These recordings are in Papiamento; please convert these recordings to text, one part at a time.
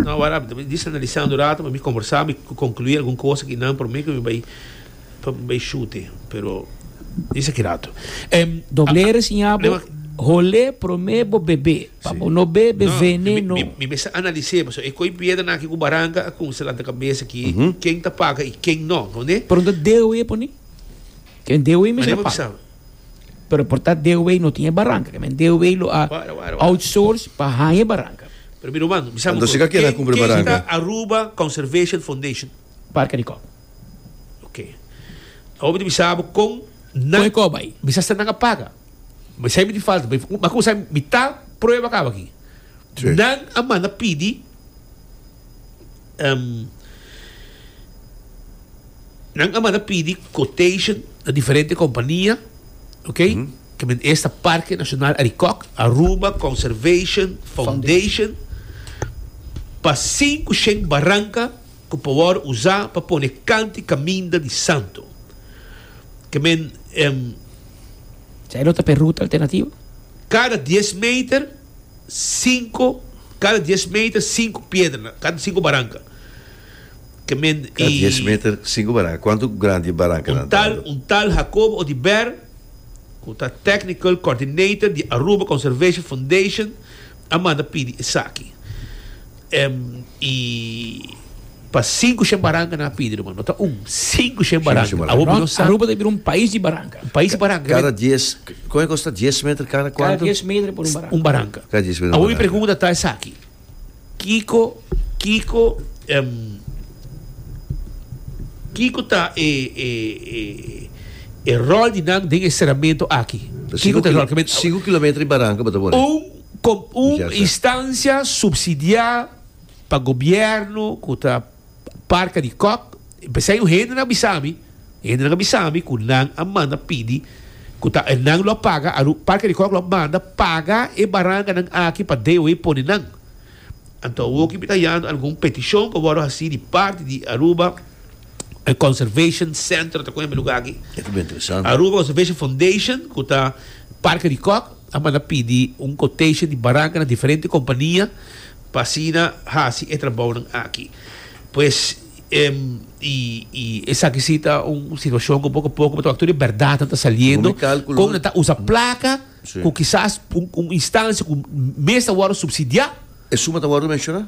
No awor ami ta bin dici analisando un rato ma mi combersa mi conclui algun cosa ki nan prome cu mi bai pa mi bai shute pero disa ki rato em Doble resiña bo hole prome bo bebe pa bo no bebe veneno. mi mi mester analice pasobra e coy piedra nan aki cu baranca a cunse lanta cabeza aki ken ta paga y ken no no ne. Pero no ta dewe pone ken dewe mester paga. Pero por ta deu wey no tin e baranca ke men deu wey lo a outsource pa haña e baranca. Pero mi Romando, mi sa bo kos, ken ken ta Aruba Conservation Foundation? Parke di Koba. Ok. Awor mi ta bisa bo kon nan, kon e Koba ay? Mi sa sa nan a paga. Mi sa mi tin falta, mi ta prueba kaba aki. Nan a manda pidi Um, nan a manda pidi quotation na diferente kompania, ok? Ke men esta Parke Nashonal Arikòk, Aruba Conservation Foundation, pa sinku shen baranka ku por wòrdu usá pa pone kanti kaminda di santo. Ke men, em, Sa e lo ta p'e ruta alternativo? kada dies meter, Sinku, kada dies meter sinku piedra na kada sinku baranka. Kada dies meter sinku baranka. Kuantu grandi e barankanan ta ando? Un tal Jacobo Odiber, ku ta Technical Coordinator di Aruba Conservation Foundation, a manda pidi esaki. I pa sinku shen baranka nan a pidi, ruman. No ta un, sinku shen baranka. Awor bo no sa. Aruba ta bira un pais di baranka. Un pais di baranka. Kada dies, kon e kos ta? Dies meter kada kuantu? Kada dies meter por un baranka. Un baranka. Kada dies meter un baranka. Awor mi pregunta ta esaki, kiko, kiko, kiko ta e, e, e, e rol di nan den e seramentu aki? Kiko ta e rol? Sinku kilometer di baranka bo ta pone? Un. Komo un instancia subsidia pa gobierno ku ta parka di kòk, p'esei un hende nan a bisa mi, un hende nan a bisa mi ku nan a manda pidi ku ta nan lo paga, a lo parka di kòk lo manda paga e baranganan aki pa DOE pone nan. Anto awoki mi ta yando algun petishon ku a wòrdu hasi di parti di Aruba Conservation Center, ta kon yama e lugar aki? Aruba Conservation Foundation ku ta parka di kòk. a manda pidi un quotation di baranca na diferente compania pa asina haci e trabounan aki. Pues, y, y esaki si ta un situacion cu poco poco bo ta wak tur e berdadnan ta saliendo, con nan ta usa placa cu kisas un, un instancia cu mes ta wordo subsidia. E suma ta wordo menciona?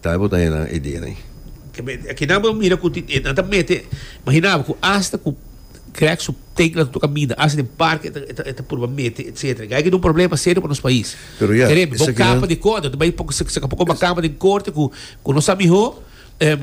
Tal bo ta hende nan e dia nei. Akinan bo mira ku tin e nan ta mete imaginabo ku asta ku krèk su tekla ta toka mina asta den parke e ta purba mete etsetera e aiki ta un problema serio pa nos pais Kerembe bo kapa di kòrte ta bai saka poko bakama den kòrte ku no sa mihó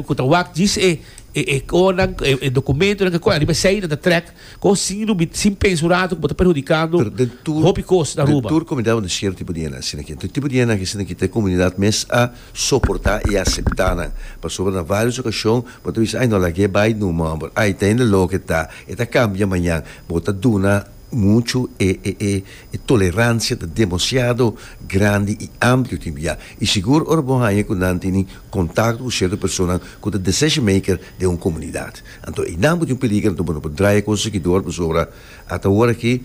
ku ta wak djis e e e kòrnan e dokumentonan ke kòrnan ariba esei nan ta trèk Con sin rubi, sin pensa un rato cu bo ta perhudicando Pero den tur, hopi cos na den Aruba. tur comunidad bo tin cierto tipo di hende asina aki. Enton e tipo di hende aki asina aki ta e comunidad mes a soporta y a acepta nan. Pasobra na varios ocasion bo ta bisa ay no laga e bay nu momber, ay ta hende loco e ta, e ta cambia mañan. Bo ta duna mucho e e e e tolerancia ta demasiado grandi y amplio tin bia. Y sigur ora bo haya cu nan tini contacto cu cierto personanan cu ta decision maker den un comunidad. Anto einan bo tin un peliger anto bo no por draya kon segidor pasobra ata ora aki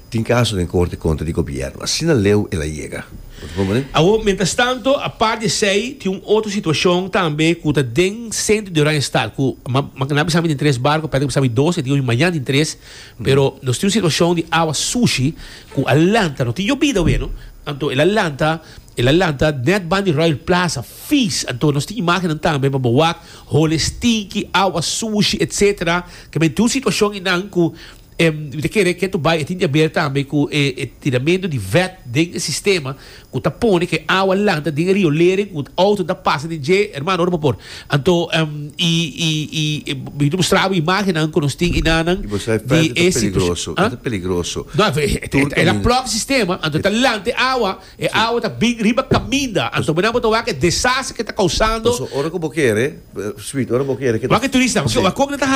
tin kaso den korte kontra di gobièrnu. Asina leu el a yega. Bo ta konpran di? Awor, mientras tanto, apart di esei, tin un otro situacion tambe cu ta den centro di Oranjestad, cu mañana bisa mi tin tres barco, p'e ater bisa mi dos, e tin hopi mañana tin tres, pero nos tin un situacion di awa sushi cu a lanta, no tin yobida awe no, anto el a lanta, el a lanta net ban di Royal Plaza, Fees, anto nos tin imágennan tambe pa bo wak, hole stinki, awa sushi, etc. Ke men tin un situashon einan ku e mi ta kere ke to bai e tin di aber tambe ku e tiramentu di vèt den e sistema ku ta pone ku e awa lanta den e riolering ku outonan ta pasa den dje. Hermano, ora por por. Anto i i mi ta mustra bo imágennan ku nos tin einannan I bo sa e vèt di e ta situashon peligroso, e ta peligroso. No, e ta plòk e sistema, anto e ta lanta e awa. E awa ta bin riba kaminda. Anto bo nan bo ta wak e desaster ke ta kousando. Paso ora ku bo kere, sweet, ora bo kere ke ta. Wak e turista, paso wak kok nan ta hasi.